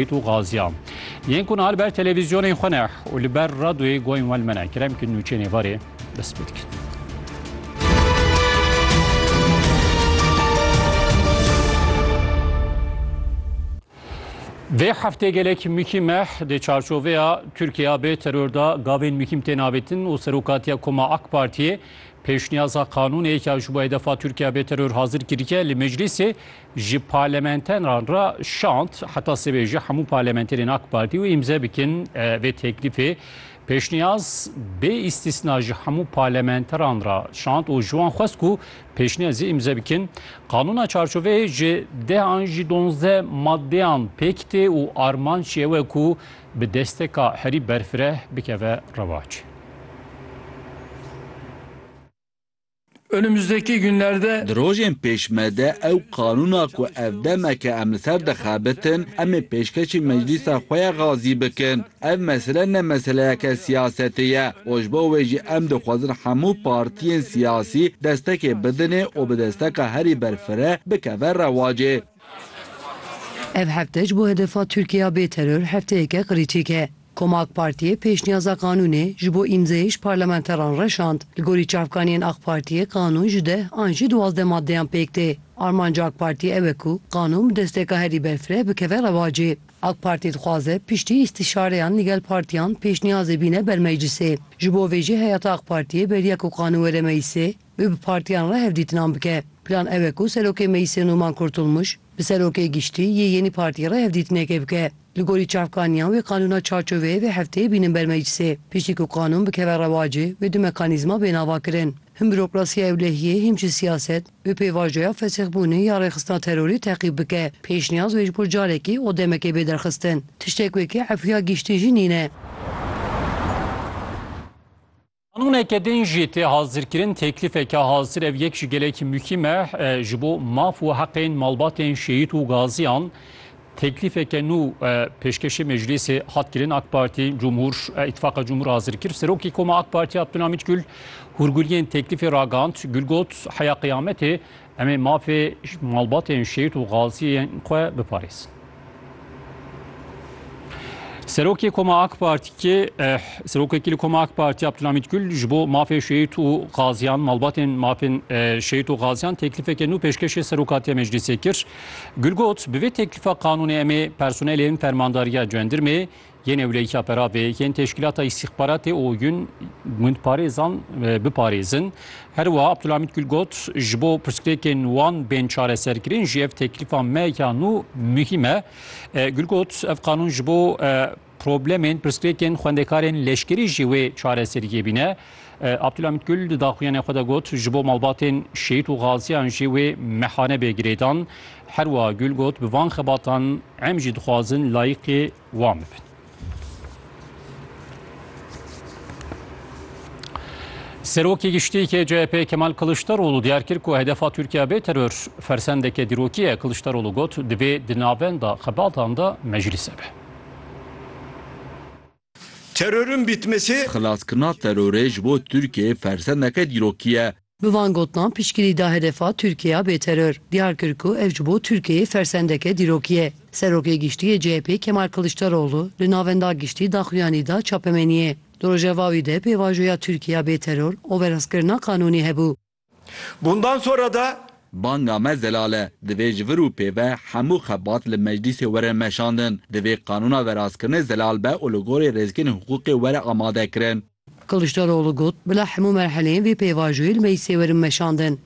û gaziya yên ku niha li ber televîzyonên xwe ne û li ber radoyê goyên we li me ne kerem kirin û çê nêvarê dest pê dikin. Vê heftê gelek mîkî me di çarçoveya Tirkiya bê teror da gavên mîkîm tên avêtin û serokatiya Koma AK Partiyê pêşniyaza qanûnê yek ya ji bo hedefa Tirkiya bê teror hazir kirike li meclîsê ji parlamenteran re şand heta sibê jî hemû parlamenterên AK Partî wê îmze bikin vê teklîfê. Pêşniyaz bê îstîsna ji hemû parlamenteran re şand û ji wan xwest ku pêşniyazê îmze bikin. Qanûna çarçoveyê ji deh an jî donzdeh maddeyan pêk tê û armanc jî ew e ku bi desteka herî berfireh bikeve rewac. Önümüzdeki günlerde Di rojên pêş me de ew qanûna ku ev demeke em li ser dixebitin, em ê pêşkêşî meclîsa xwe ya Gazî bikin. Ev mesele ne meseleyeke siyasetê ye û ji bo wê jî em dixwazin hemû partiyên siyasî destekê bidinê û bi desteka herî berfireh bikeve rewacê. Ev hefte ji bo hedefa Tirkiya bê teror hefteyeke qirîçîk e. Koma AK Partiyê pêşniyaza qanûnê ji bo îmzeyê ji parlamenteran re şand. Li gorî çavkaniyên AK Partiyê qanûn ji deh an jî duwazdeh maddeyan pêk tê. Armanca AK Partiyê ew e ku qanûn bi desteka herî berfireh bikeve rewacê. AK Partî dixwaze piştî îstîşareyan li gel partiyan pêşniyazê bîne ber meclisê. Ji bo vê jî heyata AK Partiyê beriya ku qanûn were meclisê. wê bi partiyan re hevdîtinan bike. Plan ew e ku Serokê Meclîsê Numan Kurtulmuş bi Serokê Giştî yê yênî partî re hevdîtinekê bike. Li gorî çavkaniyan wê qanûna çarçoveyê vê hefteyê bînin ber meclîsê. Piştî ku qanûn bikeve rewacê wê du mekanîzma bên avakirin. Him bürokrasiya ewlehiyê him jî siyaset wê pêvajoya fesixbûnê ya rêxistina terorê teqîb bike. Pêşniyaz wê ji bo carekê û demekê bê derxistin. Tiştek wekî efuya giştî jî nîne. Qanûneke din jî tê hazirkirin, teklîfeke hazir ev yek ji gelekî muhîm e ji bo maf û heqên malbatên şehîd û gaziyan. Teklîfeke nû pêşkêşê meclîsê hat kirin. AK Partî Cumhur Îtîfaqa Cumhur hazir kir. Serokê Koma AK Partî Abdulhamît Gul hûrguliyên teklîfê ragihand. Gul got, heya qiyametê Em ê mafê malbatên şehîd û gaziyên xwe biparêzin. Serokê Koma AK Partî Serokekî li Koma AK Partî Abdulhamîd Gül ji bo mafê şehîd û gaziyan malbatên mafên e, şehîd û gaziyan teklîfeke nû pêşkêşê Serokatiya Meclîsê kir. Gül got, bi vê teklifa qanûnê em ê personelên fermandariya cendirmê Yên ewleyîka peravê yên Teşkîlata Îstîxbaratê û Yun gundparêzan biparêzin. Her wiha Abdulhamîd Gul got, Ji bo pirsgirêkên wan bên çareserkirin jî ev teklîfa me ya nû muhîm e. Gul got, Ev qanûn ji bo problemên pirsgirêkên xwendekarên leşkerî jî wê çareseriyê bîne. Abdulhamîd Gul di daxuyanê xwe de got, Ji bo malbatên şehîd û gaziyan jî wê mehane bê girêdan. Her wiha Gul got, Bi van xebatan em jî dixwazin layîqî wan bibin. Serokê Giştî yê CHP'ê Kemal Kiliçdaroglu diyar kir ku hedefa Tirkiye bê teror fersendeke dîrokî ye. Kiliçdaroglu got, divê di navenda xebatan de meclise be. Terorun bitmesi. Xilaskirina terorê ji bo Tirkiyeyê fersendeke dîrokî ye. Bi van gotinan piştgirî da hedefa Tirkiyeya bêteror, diyar kir ku ev ji bo Tirkiyeyê fersendeke dîrokî ye. Serokê Giştî yê CHP'ê Kemal Kiliçdaroglu li Navenda Giştî daxuyanî da çapemeniyê. Di rojeva wî de pêvajoya Tirkiyeya bêteror û verazkirina qanûnî hebû. Bundan sonra da. Banga me zelal e. Divê ji vir û pêve hemû xebat li meclîsê were meşandin. Divê qanûna verazkirinê zelal be û li gorî rêzgirên hiqûqê were amadekirin. Kiliçdaroglu got, Bila hemû merheleyên vê pêvajoyê li meclisê werin meşandin.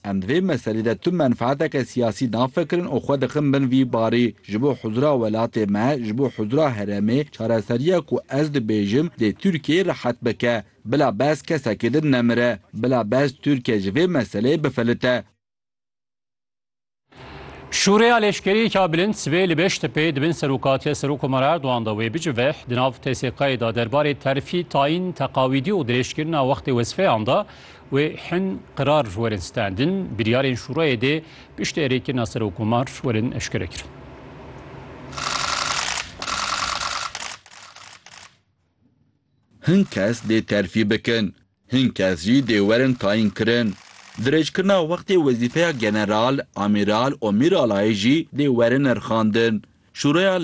Em di vê meselê de tu menfaeteke siyasî nafikirin û xwe dixin bin vî barî. Ji bo huzira welatê me, ji bo huzira herêmê çareseriya ku ez dibêjim dê Tirkiyeyê rihet bike. Bila behs kesekê din nemire. Bila behs Tirkiye ji vê meseleyê bifelite. Şûreya leşkerî ka bilind sibê li Beştepê di bin serokatiya Serokkomara Erdogan de wê biciveh di nav TSK'ê de derbarê terfî, tayîn, teqawîdî û dirêjkirina wextê wezifeyan de wê hin qirar werin standin. Biryarên şûreyê dê piştî erêkirina Serokkomar werin eşkerekirin. Hin kes dê terfî bikin, hin kes jî dê werin tayînkirin. Dirêjkirina wextê wezîfeya general, amîral û mîralayê jî dê werin nirxandin. Şûreya